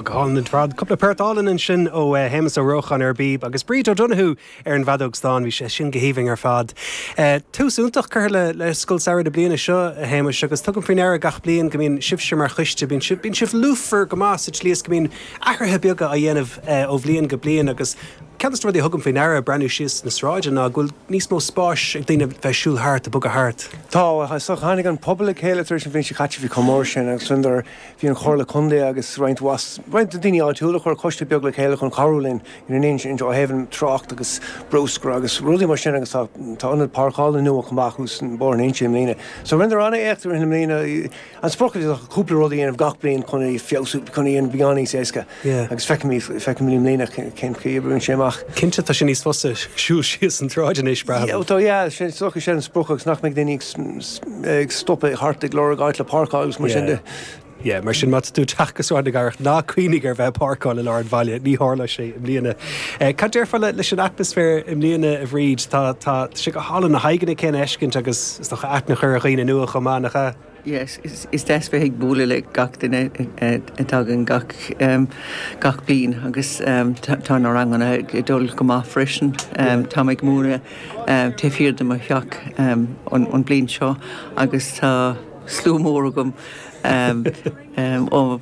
Go hálainn ar fad. Cúpla port álainn ansin ó Shéamus Ó Rócháin ar an bpíb agus Bríd O'Donoghue ar an bhfeadóg stáin, bhí sé sin go haoibhinn ar fad. Tús iontach curtha le Scoil Samhraidh na bliana seo, a Shéamuis, agus tugaim faoi ndeara gach bliain go mbíonn sibhse mar choiste, bíonn sibh lúthmhar go maith sa tslí is go mbíonn athruithe beaga á dhéanamh ó bhliain go bliain agus, Ceann de na rudaí a thugaim faoi ndeara ag breathnú síos sna sráideanna ná go bhfuil níos mó spáis ag daoine bheith ag siúl thart, ag bogadh thart. Tá, is dócha. Tháinig an pobal le chéile tar éis an bhliain seo caite, bhí chomh mór sin, agus sin nuair a bhí an Chomhairle Contae agus roinnt mhaith, roinnt daoine áitiúla, chuir coiste beag le chéile chun cabhrú linn ina n-intinn ó thaobh an trácht agus brúscar agus rudaí mar sin agus tá, tá ionad páirceála nua chomh maith acu san Bóthar na hInse i mbliana. So rinneadar an-éacht i rith na bliana. An sprioc is dócha cúpla rud a dhéanamh gach bliain chun é feabhsú, chun é a dhéanamh beagán níos éasca agus feicfimid, feicfimid i mbliana cén chaoi a oibríonn sé amach. Cinnte tá sé níos fusa siúl síos an tsráid anois, braithim. Ó tá, yeah, sin, is dócha sin an sprioc agus nach mbeidh daoine ag stopadh thart ag lorg áit le páirceáil agus mar sin de. Yeah, yeah, mar sin má tá tú ag teacht go Sráid na Cathrach ná cuimhnigh ar bheith ag páirceáil i lár an bhaile, ní tharlóidh sé i mbliana. Cad déarfá leis an atmaisféar i mbliana a Bhríd, tá, tá sé go hálainn na haghaidheanna céanna a fheiscint agus is dócha aithne a chur ar dhaoine nua chomh maith, nach ea? Yes, is deas bheith ag bualadh le gach duine a dtagann gach bliain agus tá na ranganna ag dul go maith freisin. Táim ag múineadh taobh thiar de mo theach an bhliain seo agus tá slua mór agam ó.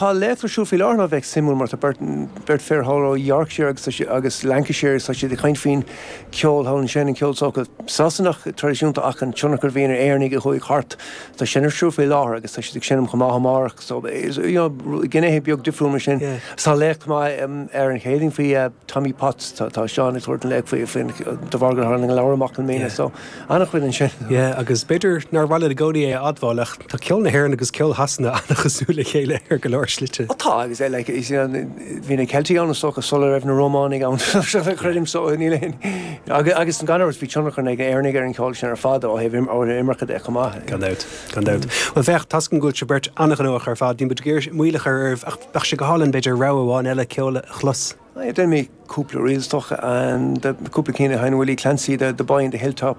Tá léachtaí ar siúl faoi láthair, a bheadh suimiúil, mar tá beirt, beirt fir thall ó Yorkshire agus tá siad, agus Lancashire, agus tá siad ag caint faoin cheol thall ansin, an ceol sórt Sasanach traidisiúnta ach an tionchar a bhíonn ag Éireannaigh a chuaigh thart, tá sin ar siúl faoi láthair agus tá siad ag seinm chomh maith amárach so is, you know, gnéithe beag difriúil mar sin. Is tá léacht maith ar an Chéadaoin faoi Tommy Potts, tá, tá Seán ag tabhairt an léacht faoi, faoin, de bharr gur tháinig an leabhar amach i mbliana so. Ana-chuid ansin. Yeah, agus b'fhéidir nár mhaith liom i gcónaí é a admháil, ach tá ceol na hÉireann agus ceol Shasana ana-chosúil le chéile ar go leor slite. Ó tá, agus like, is you know, bhí na Ceiltigh ann, is dócha, sula raibh na Rómánaigh ann, creidim, so níl aon, agus gan amhras, bhí tionchar ag na Éireannaigh ar an cheol sin ar fad ó thaobh an imirce de chomh maith. Gan dabht, gan dabht. Bhuel, féach, toisc go bhfuil sibh beirt ana-ghnóthach ar fad, níl muid ag iarraidh moill a chur oraibh, ach bheadh sé go hálainn, b'fhéidir, rogha amháin eile ceoil a chlos. Yeah, déanfaidh mé cúpla reel, is dócha, cúpla cinn le haghaidh an Willie Clancy, The Boy in the Hilltop.